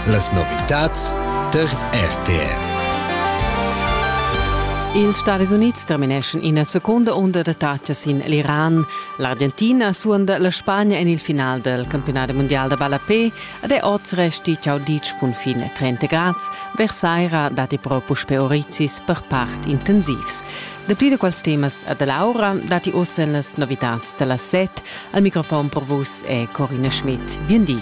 Las novitads der RTR. Ils Stadis Unids termineschan ina seconda unda d'attacas sin l'Iran. L'Argentina suonda la Spagna en il final del campionat mondial da ballapé ed è oz resti ciao ditg cun fin a 30 grads. Versaira datti però puspè orizis per part intensivs. Dapli da quels temas a da Laura datti oz en las novitads da las set. Al microfon per vus è Corina Schmidt. Bien di.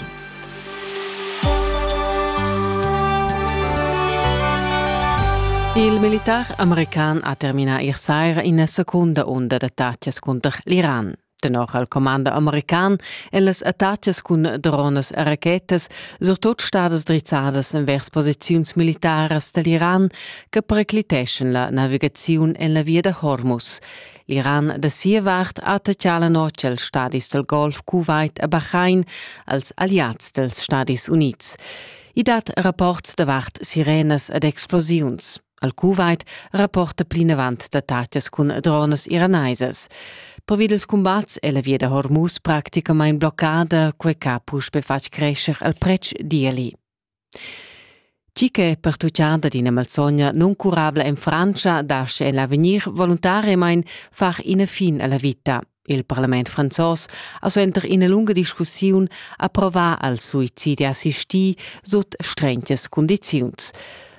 Il militar american ha terminà ier saira ina secunda unda d'attacas cunter l'Iran. Tenor al comando american èn las attacas cun dronas e rachetas surtut stadas drizzadas envers posiziuns militaras da l'Iran che pericliteschan la navigaziun en la via da Hormuz. L'Iran da sia vart ha taccà la notg els stadis del Golf Kuwait e Bahrain als aliats dels Stadis Units. I dat rapports davart sirenas ed explosiuns. Al Kuwait rapporta plinavant d'attacas cun dronas iraneisas. Pervi dels combats è la via da Hormuz practicamain bloccada, quei ch'ha puspe fatg crescer il pretsch d'ieli. Tgi che è pertutgada d'ina malsogna nuncurabla en Frantscha lascha en l'avegnir voluntariamain far ina fin a la vita. Il parlament franzos ha suenter ina lunga discussiun approvà al suicidi assistì sut strentas cundiziuns.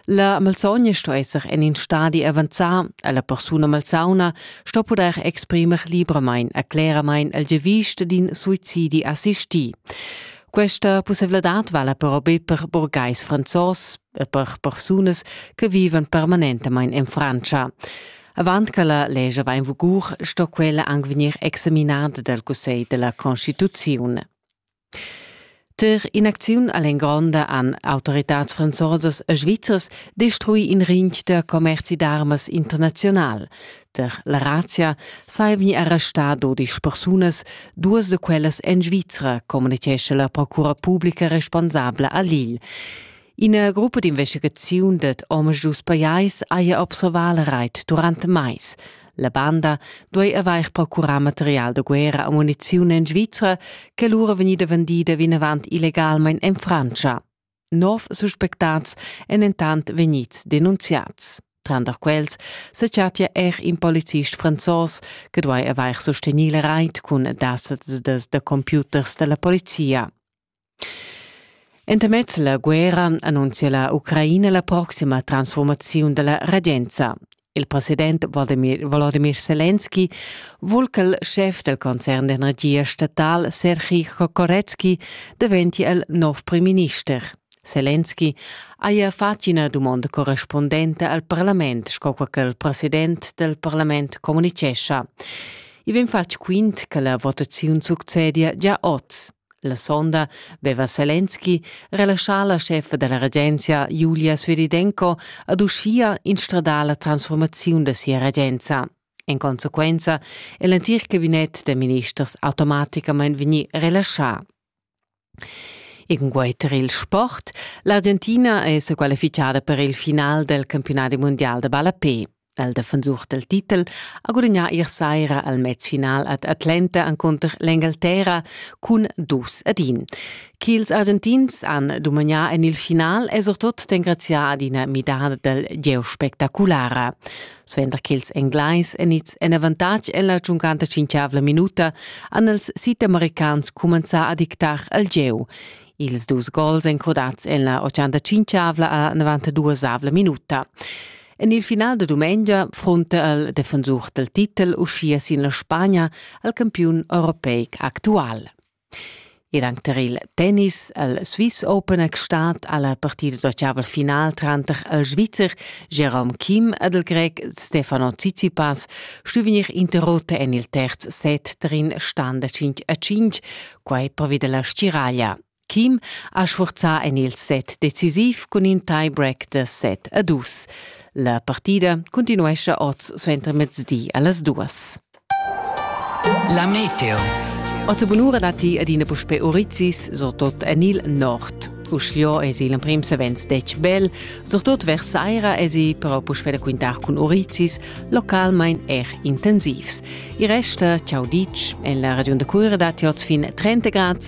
La malsogna sto esser en in stadi avanzà, la persuna malsauna sto pudair exprimer libramain e cleramain il giavisch d'in suicidi assistì. Questa pussevladad vala però be per burgais franzos e per persunas che vivan permanentamain en Francia. Avant che la legge va in vigur, sto quella anche vegnir examinata dal Cussegl della Constituzione. Ter in'acziun all'engronda han autoritads franzosas e svizzers destruì in rintg da commerzi d'armas internaziunal. Ter la Razia sai vegnir arrestà dodisch persunas, duas da quellas en Svizra, communitgescha la procura publica responsabla a Lille. Ina gruppa d'investigaziun dad omas dus pajais haja observà la rait durant mais. La banda duai avair procurà material da guerra e muniziun en Svizra che lura vegnida vendida vinavant illegalmain en Frantscha. Nov suspectats èn entant vegnids denunziads. Tranter quels se chattia er in polizist franzos che duai avair sustegnì la rait cun dasets da computers da la polizia. Entamez la guerra annunzia la Ucraina la proxima transformaziun dalla regenza. Il president Volodymyr, Volodymyr Selenski vul che il schef del concern d'energia statal Sergei Kokorecki diventi il nov primminister. Selenski haja fatg ina dumonda correspondente al parlament, sco che il president del parlament communicescha. I vegn fatg quint che la votaziun succedia gia oz. La sonda veva Selenski relaschà la scheffa dalla regenza Julia Sviridenko ad uschia instradar la transformaziun da sia regenza. En consequenza è l'entir cabinet da ministers automaticamain vegnì relaschà. In guaiter il sport, l'Argentina è sa qualificada per il final del campionati mondial da ballapé. El defensur del titel ha gudignà ier saira al mez final ad Atlanta encunter l'Engalterra cun dus ad in. Ch'ils Argentins han dumagnà en il final è surtut d'engraziar ad ina midada del gieu spectaculara. Suenter ch'ils Englais enids en avantatg en la giuncanta cinquiavla minuta han els südamericans cumenzà a dictar al gieu. Ils dus gols encrodats en la 85avla a 92avla minuta. En il final da dumengia frunta el defensur dal titel uschia sin la Spagna al campiun europeic actual. Ed anche tar il tennis al Swiss Open è stat alla partida d'ottaval final tranter il Svizzer Jerome Kim ed il Grec Stefano Tsitsipas stu vegnir interrotto en il terz set tar in stand da 5 a 5, quai pervi della stiraglia. Kim ha sfurzà en il set decisiv cun in tie-break da set a dus. La partida cuntinuescha oz suentermezdi a las duas. La meteo. Otta bunura datti adina puspè Urizis, so tot en il nord. Uschio es il emprim savens detg bel, surtot vers saira esi però puspè da quintar cun Urizis, localmain er intensivs. Il resta, ciao ditg, en la ragion da Cura datti oz fin 30 grad